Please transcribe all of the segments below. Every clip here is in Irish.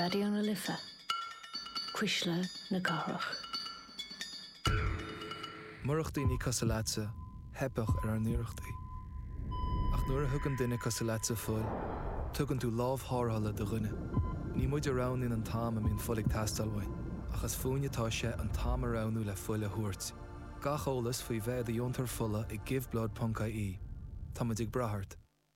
Raidió na Life, Cuisle na Cathrach. Murach daoine cosúil leatsa, theipfeadh ar ár n-iarrachtaí. Ach nuair a thugann duine cosúil leatsa fuil, tugann tú lámh tharrthála do dhuine. Ní muid a roghnaíonn an t-am a mbíonn fuil ag teastáil uainn, ach is fúinn atá sé an t-am a roghnú le fuil a thabhairt. Gach eolas faoi bheith i do dheontóir fola ag Give Blood ponc ie Tá muid ag brath ort.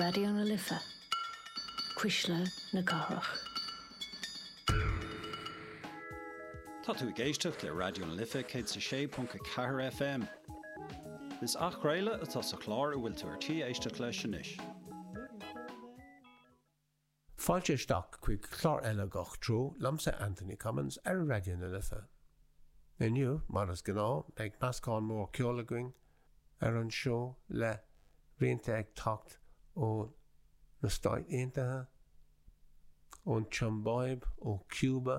Raidió na Life, Cuisle na Cathrach. Tá tú ag éisteacht le Raidió na Life 106.4 FM. Is athchraoladh atá sa chlár a bhfuil tú ar tí éisteacht leis anois. Fáilte isteach chuig clár eile Gach Treo liomsa Anthony Cummins ar Raidió na Life. Inniu, mar is gnáth, beidh meascán mór ceoil againn ar an seó le rianta ag teacht ó na Stáit Aontaithe, ón tSiombáib, ó Cúba,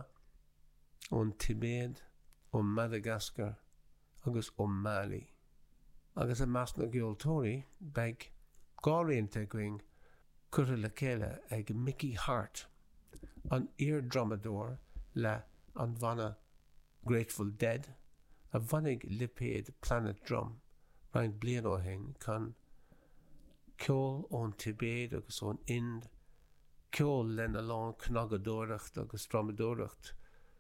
ón Tibéid, ó Mhadagascar, agus ó Mailí. Agus i measc na gceoltóirí beidh dhá rianta againn curtha le chéile ag Mickey Hart, an iar-drumadóir le an bhanna Grateful Dead a bhunaigh lipéad Planet Drum roinnt bliain ó shin chun ceol ón Tibéid agus ón Ind, ceol lena lán cnagadóireacht agus drumadóireacht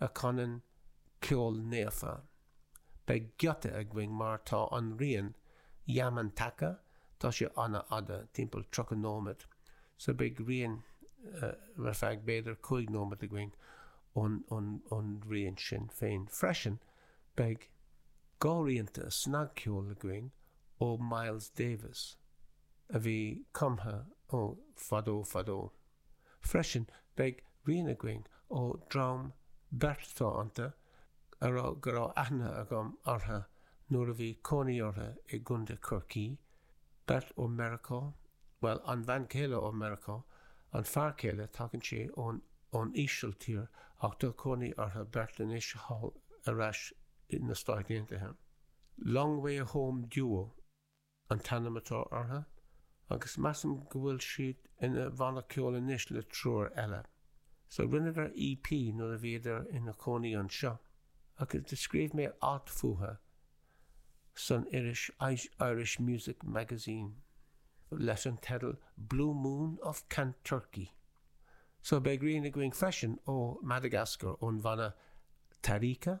a chanann ceol naofa. Beidh giota againn mar tá an rian Yamantaka, tá sé ana fhada, timpeall 30 nóiméad, so beidh rian ar feadh b'fhéidir 5 nóiméad againn ón rian sin féin. Freisin beidh dhá rianta snagcheoil againn ó Miles Davis a bhí cumtha ó fadó fadó. Freisin beidh rian againn ó dream beirt atá iontu a raibh go raibh aithne agam orthu nuair a bhí cónaí orthu i gContae Chorcaí, beirt ó Mheiriceá, bhuel an bhean chéile ó Mheiriceá, an fear céile tagann sé ón ón Ísiltír ach tá cónaí orthu beirt anois thall ar ais i na Stáit Aontaithe. Long Way Home Duo. an t-ainm atá orthu agus measaim go bhfuil siad ina bhanna ceoil anois le triúr eile. So rinneadar EP nuair a bhíodar ina chónaí anseo agus do scríobh mé alt fúthu san iris Irish Music Magazine leis an teideal 'Blue Moon of Kanturkey'. So beidh rian againn freisin ó Madagascar ón bhanna Tarika.